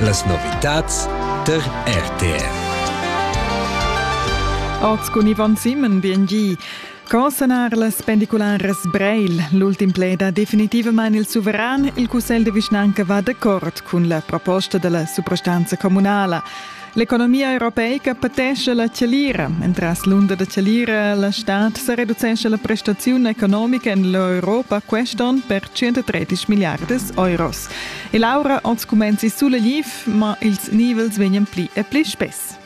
Las novitads tar RTR. Oz cun Ivan Simon, BNG. Con sanar las pendicularas Breil, l'ultim pleda definitivamain il suveran, il Cussegl de Vischnanca va d'accord cun la proposta della suprastanza comunala. L'economia europeica patescha la chalira. Entras l'unda da chalira la stad sa reducescha la prestaziun economica en l'Europa quest'onn per 130 milliardas euros. E l'aura oz cumenzi sulegliv, ma ils nivels vegnan pli e pli spess.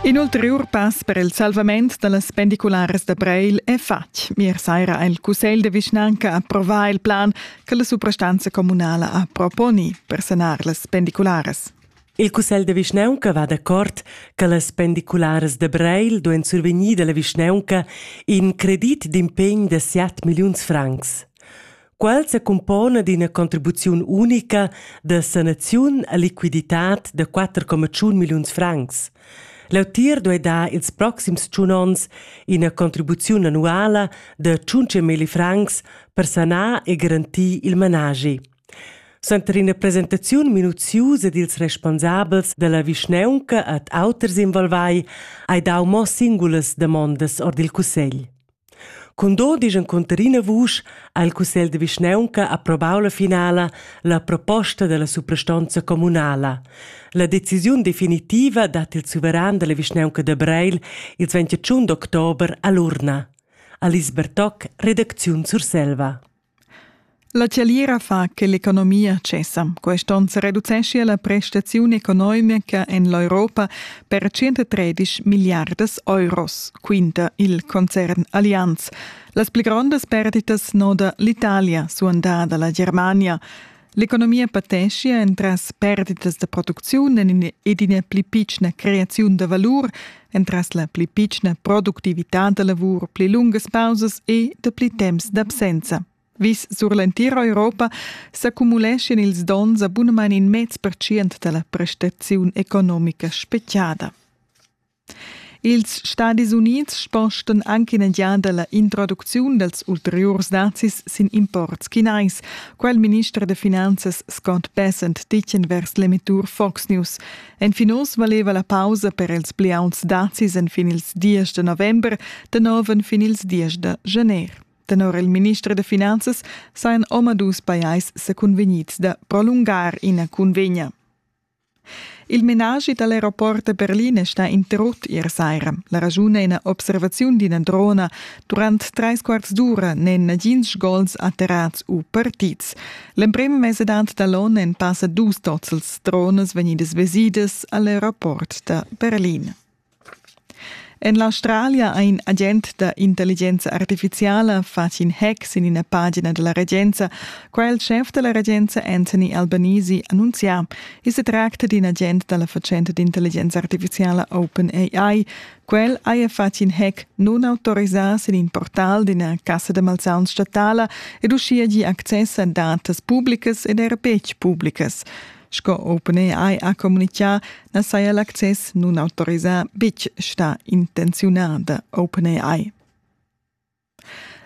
In ulteriur pass per il salvament da las pendicularas da Breil è fa. Mir saira ha il cussegl de vischnanca approvà il plan che la suprastanza communala ha proponi per sanar las pendicularas. Il cussegl de vischnaunca va d'accord che las pendicularas de Breil duein survegnir dalla vischnaunca in credit d'impegn de 7 milliuns francs. Quel secumpona d'ina contribuziun unica da sanaziun a liquiditad da 4,1 milliuns francs. L'autir duai dar ils proxims tschun onns ina contribuziun annuala da 5 milli francs per sanar e garantir il managi. Suenter ina presentaziun minuziusa dils responsabels dalla vischneunca ad auters involvai hai dau mo singulas damondas ord il cussegl. Cun do dischencunterina vusch ha il cussegl da vischnaunca approvau la finala la proposta dalla suprastonza communala. La decisiun definitiva dat il suveran dalla vischnaunca da Breil ils 21 d'october all'urna. Alice Bertoc, redacziun Surselva. La tschaliera fa che l'economia cessa. Quest'onn se reduceschia la prestaziun economica en l'Europa per 113 miliardas euros, quinta il concern Allianz. Las pli grondas perditas noda l'Italia, suandada la Germania. L'economia pateschia entras perditas da producziun ed ina pli pitschna creaziun da valur, entras la pli pitschna productivitad da lavur, pli lungas pausas e dapli temps d'absenza. Vis sur l'entira Europa s'accumuleschien ils donns a bunamain in mez percient da la prestaziun economica speziada. Ils Stadis Unids spostan anc ina giada la introducziun dals ulteriurs dazis sin imports chinais. Quel minister da finanzas Scott Bessent ditg envers l'emettur Fox News. Enfin oz valeva la pausa per els pli auts dazis enfin ils dies da november, da nov enfin ils dies da gener. Tenor il minister da finanzas sajan omadus pajais sa cunvegnids da prolungar ina cunvegna. Il menaschi dall'aeroport da Berlin è stà interrut ier saira. La raschun è ina observaziun d'ina drona. Durant trais quarts d'ura n'èn nagins sgols atterrads u partids. L'emprim mesedad da l'onn èn passa dus tozzels dronas vegnidas vesidas a l'aeroport da Berlin. En l'Australia ha in agent da intelligenza artifiziala fatg in hack sin ina pagina da la regenza. Qua è il schef da la regenza Anthony Albanese annunzià. I sa tracta d'in agent da la fatschenta d'intelligenza artifiziala OpenAI. Quel haja fatg in hack nunautorisà sin in portal d'ina cassa da malsauns statala ed uschia gi access a datas publicas ed er betg publicas. Sco OpenAI ha communitgà na saja l'access nunautorisà betg stà intenziunà da OpenAI.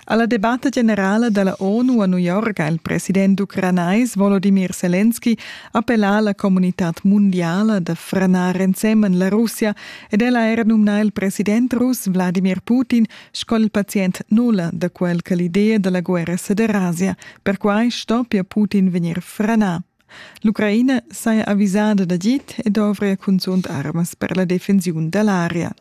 A la debatta generala da la ONU a New York ha il president ucranais Volodimir Selenski appellà la comunitad mundiala da franar ensemen la Russia ed el ha er numnà il president russ Vladimir Putin sco il pazient nulla da quel che l'idea da la guerra sederasia. Perquai stoppia Putin vegnir franà. L'Ucraina saja avisada d'agid e dovria cunzunt armas per la defensiun da l'aria.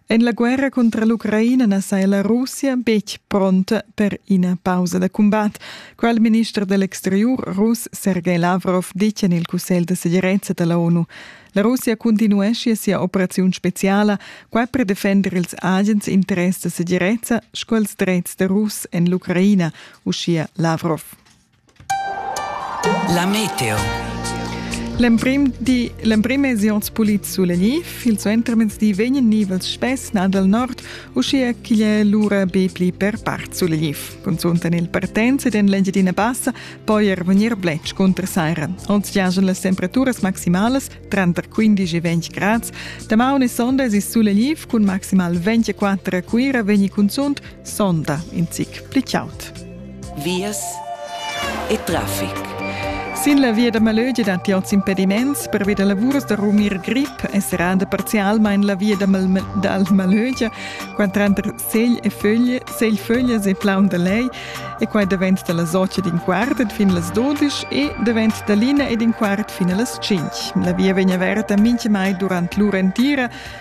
En la guerra contra l'Ucraina na saja la Russia betg pronta per ina pausa da cumbat. Quel minister dell'exteriur russ Sergei Lavrov dice en il Cussegl da segirezza da la ONU. La Russia continueschia sia operaziun speciala, quai per defender ils agens interess da segirezza sco ils drets da russ en l'Ucraina, uschia Lavrov. La meteo. L'emprim di, l'emprim mesi ons pulit sulenì, il suentermezdi vegnan nivels spess na dal nord, uschia ch'igl è lura be pli per part sulenì. Cunzunt en il partenza ed en l'Engiadina Bassa poi er vegnir bletsch cunter saira. Oz viagian las temperaturas maximalas tranter 15 e 20 grads. Damaun e sonda è sulenì cun maximal 24 a Cuira vegni cunzunt sonda in zic pli chaud. Vias e traffic. Sin la via da Malögi datti oz impediments pervi da lavurs da rumir grip e serranda parzialmain la via da Mal dal Malögia qua tranter segl e föglie, segl föglias e Plaun da Lei e quai davent da las 8 ed in quart fin las 12 e davent da l'ina ed in quart fin a las 5. La via vegn averta mintgamai durant l'ura entira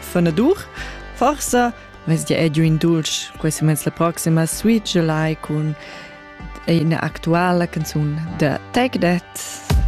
Fenadur? Forsa vess dir è giu in dulce questi mens la proxima Sweet July cun ina actuala canzun da Take That.